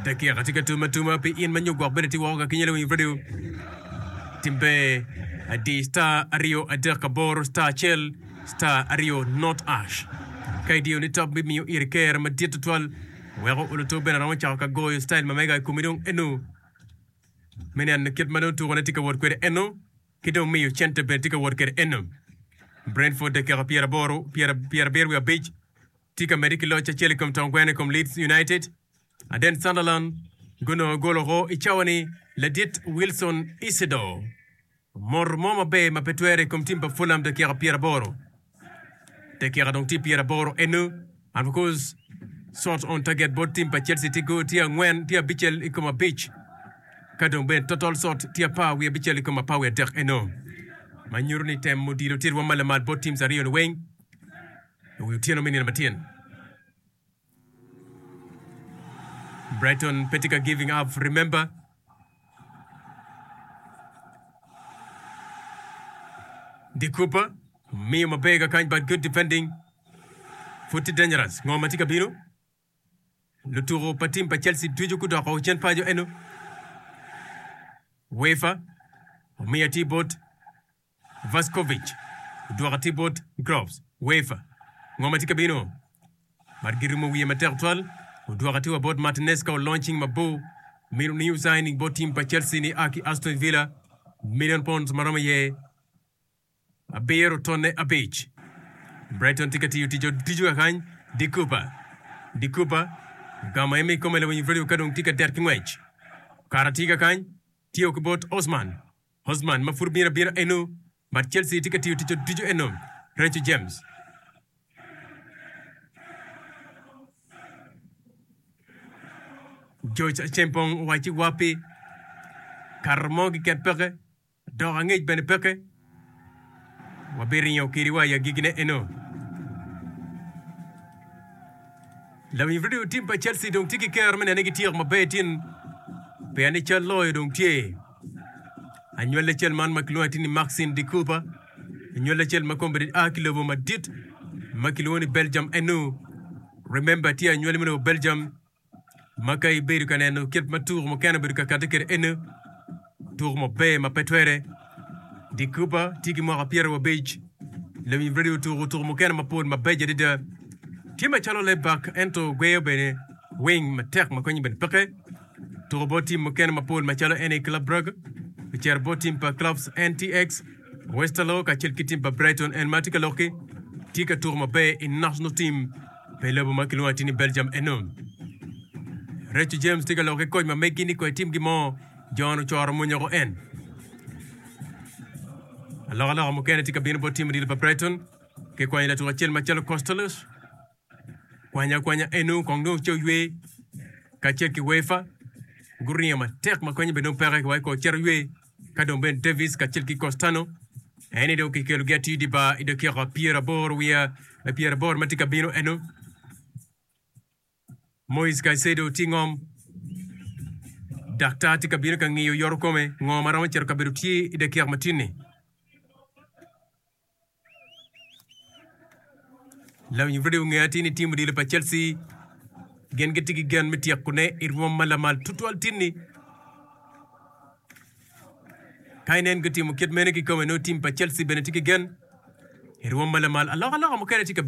dakika tye ka tum atuma pi in ma nyo gwok bene tye woko ka kinyele wing radio timbe adi star aryo adek aboro star acel star aryo not ash ka idiyo ni top bimiyo iri ker madit tutwal weko oluto bene aromo cako ka goyo style ma mega i komi dong eno me neno kit ma dong tukone tye ka wot kwede eno ki dong miyo cente bene tye ka wot kwede eno Brentford dakika pyeraboro pyerabiro wiye abic Tye ka medde ki loc acel i kom tong gweno i kom Leeds United, aden Sunderland gunongo gol woko i cawa ni ladit Wilson Isidore omoro mo maber ma pe twere i kom tim pa Fulham dakika pyera aboro. Dakika dong tye pyera aboro eno, and of course shot on target bot tim pa Chelsea tye go tye angwen tye abicel i kom abic ka dong bene total shot tye apar wiye abicel i kom apar wiye adek eno ma nyuto ni temo dilo tye rwom ma lamal bot teams aryo ni weng. I wi otyeno me nino matyen, Brighton pe tye ka giving up, remember. De Cooper miyo maber kakany but good defending. Pud tye dangerous. Ngo ma tye ka bino? Lutuko pa tim pa Chelsea ducu gudoko cen paco eno. Wefa omiyo atir bot. Vuskovic odwoka atir bot Groves, UEFA, Ngo ma tye ka bino? Mar girumo wiye matek twal. Odwoka atir wa bot Martinez ka olony cing mabor. Mito new signing bot team pa Chelsea ni a ki Aston Villa, million pounds ma romo iye abiro tonne abic. Brighton tye ka tiyo tic otico kakany De Cooper. De Cooper ogamo eme ikome lawiny Vrilio ka dong tye ka det ki ngwec. Kara tye kakany, tiyo ki bot Osman. Osman ma pud obino abina eno bad Chelsea tye ka tiyo tic otuco eno, Reece James. George Acheampong owacci wa pi Kato mo giket peke dok angec bene peke wa bi ringo kidi wa i agigi ne eno. Lawiny radio tim pa Chelsea dong tye ki kero me nene gityeko maber tin pien ni cal loyo dong tye. Anywali acel man ma kilwongo ni Maxine de Cooper, anywali acel ma kombeddi a ki lobo madit ma kilwongo ni Belgium enu. Remember tye anywali me lobo Belgium ma ka ibedo ka neno kit ma tuko mukene obedo ka kati kede enu, tuko maber ma pe twere. De Cooper tye ki mwaka pyero wa abic, lewiny Brady otuko tuko mukene mapol mabeco adada. Tye macalo left back ento gweyo bene wing matek ma konyo bene peke. Otuko bot tim mukene mapol macalo NA Club Brugge, ocito bot tim pa Clubs NTX, Westerlo kacel ki tim pa Brighton and ma tye ka lok-ki tye ka tuko maber I national team pa I lobo ma kilwongo atir ni Belgium eno. Reco James tye ka lok ki koc ma meggi ni koy timgi mo John ocoro munyoko en. Alokaloka mukene tye ka bino bot tim odilo pa Brighton ki kwanyo latuk acel macalo Costellos Kwany akwanya eno kong dong ce oywe kacel ki Wefa guriyo matek ma konye bene dong peke wa kor cito ywe ka dong bene Davis kacel ki Costano eni dong kikelogi atir di bar i dakika pyeraboro wiya me pyeraboro ma tye ka bino eno Moise Caicedo tye ngom daktar tye ka bino ka ngiyo yoro kome ngo ma romo cito kabedo tye i dakika matini Lawi nyim rwode ongeyo atir ni tim odilo pa Chelsea gin gitye ki gen me tyekone i rwom ma lamal tutwal tin-ni. Ka inen gutimo kit meno kikome, nongo tim pa Chelsea bene tye ki gen i rwom ma lamal. Alokaloka mukene tye ka bino.